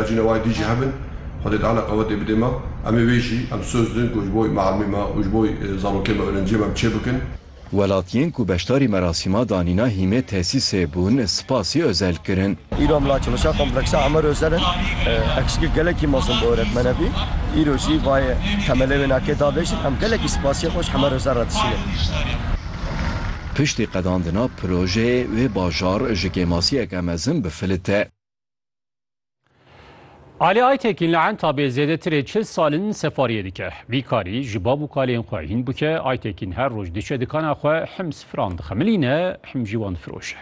Jîna wayî dî jî hebin. Xwedê dane qewetê bidê me. Em ê wê jî em soz din ku ji bo mialmê me û ji bo zarokên me ûrenciyê me em çê bikin. Welatiyên ku beşdarî merasîma danîna hîmê tesîsê bûn spasî Özel kirin. Îro mla çalışa kompleksa Amer Özel in. Eksikê gelekî mezin bi oretmene bî. Îro jî vayê temelê wê nakê davêjin. Em gelekî spasiyê xwe ji Amer Özel re dişînin. Piştî qedandina projeyê wê bajar ji kêmasiyeke mezin bi filit e. Ali Aytekin li Entabê zêdetirê çil sal in sefariyê dike. Vî karî ji bav û kalên xwe hîn bike, Aytekin her roj diçe dikana xwe him sifiran dixemilîne him jî wan difiroşe.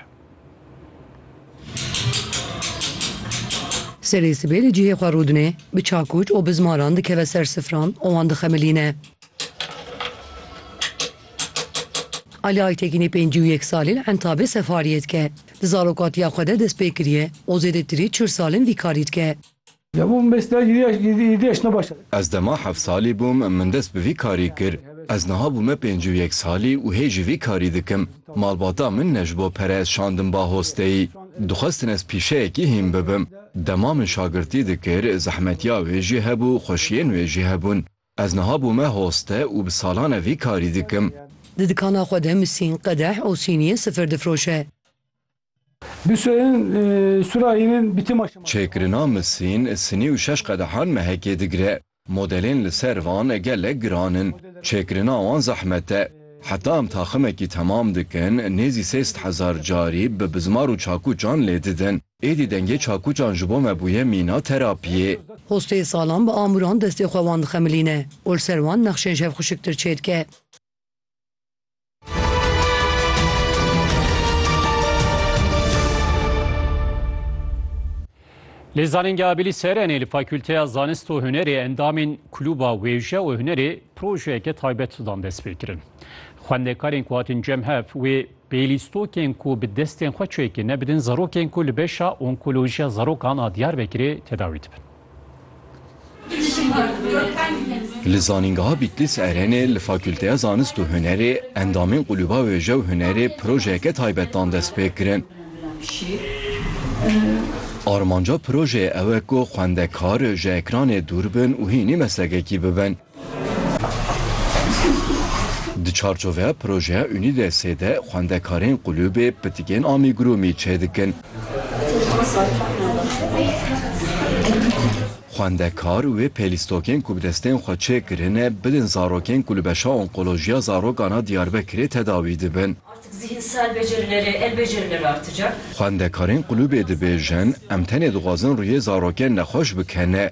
Serê sibê li cihê xwe rûdinê, bi çakûç û bi zmaran dikeve ser sifiran û wan dixemilîne. Ali Aytekinê pêncî û yek salî li Entabê sefariyê dike. Di zarokatiya xwe de dest pê kiriye û zêdetirî çil sal in vî karî dike. Ez dema heft salî bûm min dest bi vî karî kir. Ez niha bûme pêncî û yek salî û hê jî vî karî dikim. Malbata min ne ji bo pere ez şandim ba hosteyî. Dixwestin ez pîşeyekî hîn bibim. Dema min şagirtî dikir, zehmetiya wê jî hebû, xweşiyên wê jî hebûn. Ez niha bûme hoste û bi salan e vî karî dikim. Di dikana xwe de misîn, qedeh û sîniyên sifir difroşe. Bisûyên sûrahînin bi tîma şema. Çêkirina misîn, sinî û şeş qedehan mehekê digire. Modelên li ser van gelek giran in. Çêkirina wan zehmet e. Heta em taximekî temam dikin, nêzî sê sed hezar carî bi bizmar û çakûçan lê didin. Êdî dengê çakûçan ji bo me bûye mîna terapiyê. Hostê salan bi amûran destê xwe wan dixemilîne û li ser wan nexşên şevxuşiktir çêdike. Li Zanîngeha Bilî Serenê li Fakûlteya Zanist û Hunerê endamên Klûba Wêje û Hunerê projeyeke taybet dan destpêkirin. Xwendekarên ku hatin cem hev wê Bêlîstokên ku bi destên xwe çêkê nebidin zarokên ku li beşa onkolojiya zarokan a Diyarbekirê tedawî dibin. Li Zanîngeha Bîtlîs Erenê li Fakûlteya Zanist û Hunerê endamên Qulûba Wêje û Hunerê projeyeke taybet dan destpêkirin. Armanca projeyê ew e ku xwendekar ji ekranê dûr bin û hînî meslekekî bibin. Di çarçoveya projeya Unîdesê de xwendekarên qulûbê pitikên amîgurûmî çêdikin. Xwendekar wê pêlîstokên ku bi destên xwe çêkirine bidin zarokên ku li beşa onkolojiya zarokan a Diyarbekirê tedawî dibin. Xwendekarên qulûbê dibêjin, Em tenê dixwazin rûyê zarokên nexweş bikene.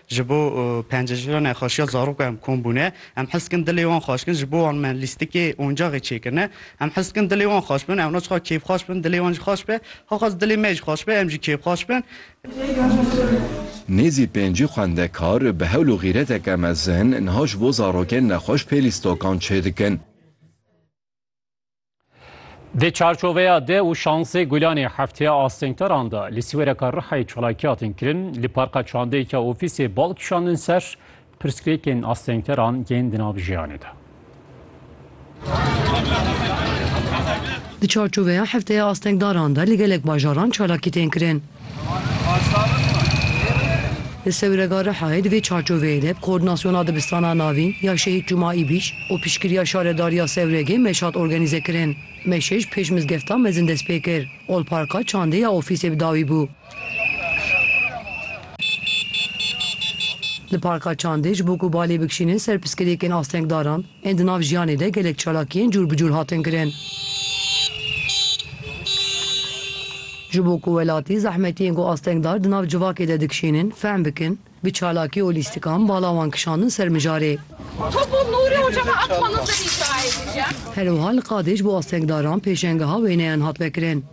Ji bo pencejîra nexweşiya zarok em kom bûne. Em hez dikin dilê wan xweş bikin. Ji bo wan me lîstikê oncexê çêkirine. Em hez dikin dilê wan xweş bibin. Ewna çiqas kêfxweş bibin, dilê wan jî xweş be. Hewqas dilê me jî xweş be, em jî kêfxweş bin. Nêzî pêncî xwendekar bi hewl û xîreteke mezin niha ji bo zarokên nexweş pê lîstokan çêdikin. Di çarçoveya de û şansê Gulanê hefteya astengdaran de li Sîwereka Rihayê çalakiyatên kirin, li parka çandeyeke ofîsê bal kişandin ser pirsgirêkên astengdaran yên di nav jiyanê de. Di çarçoveya hefteya astengdaran de li gelek bajaran çalakî tên kirin. Li Sewrega Rihayê di vê çarçoveyê de bi Koordinasyona Dibistana Navîn ya Şehîd Cuma Îbîş û piştgiriya Şaredariya Sewregê meş hat organîze kirin. Meşê ji pêş mizgefta mezin dest pê kir. Olparka çandê ya ofîsê bi dawî bû. Li parka çandê ji bo ku balê bikişînin ser piskirêkên astengdaran, Ên di nav jiyanê de gelek çalakiyên cûr bi cûr hatin kirin. Ji bo ku welatî zehmetiyên ku astengdar di nav civakê de dikişînin fehm bikin, bi çalakî û lîstikan bala wan kişandin ser mijarê. Her wiha li qadê ji bo astengdaran pêşengeha wêneyan hat vekirin.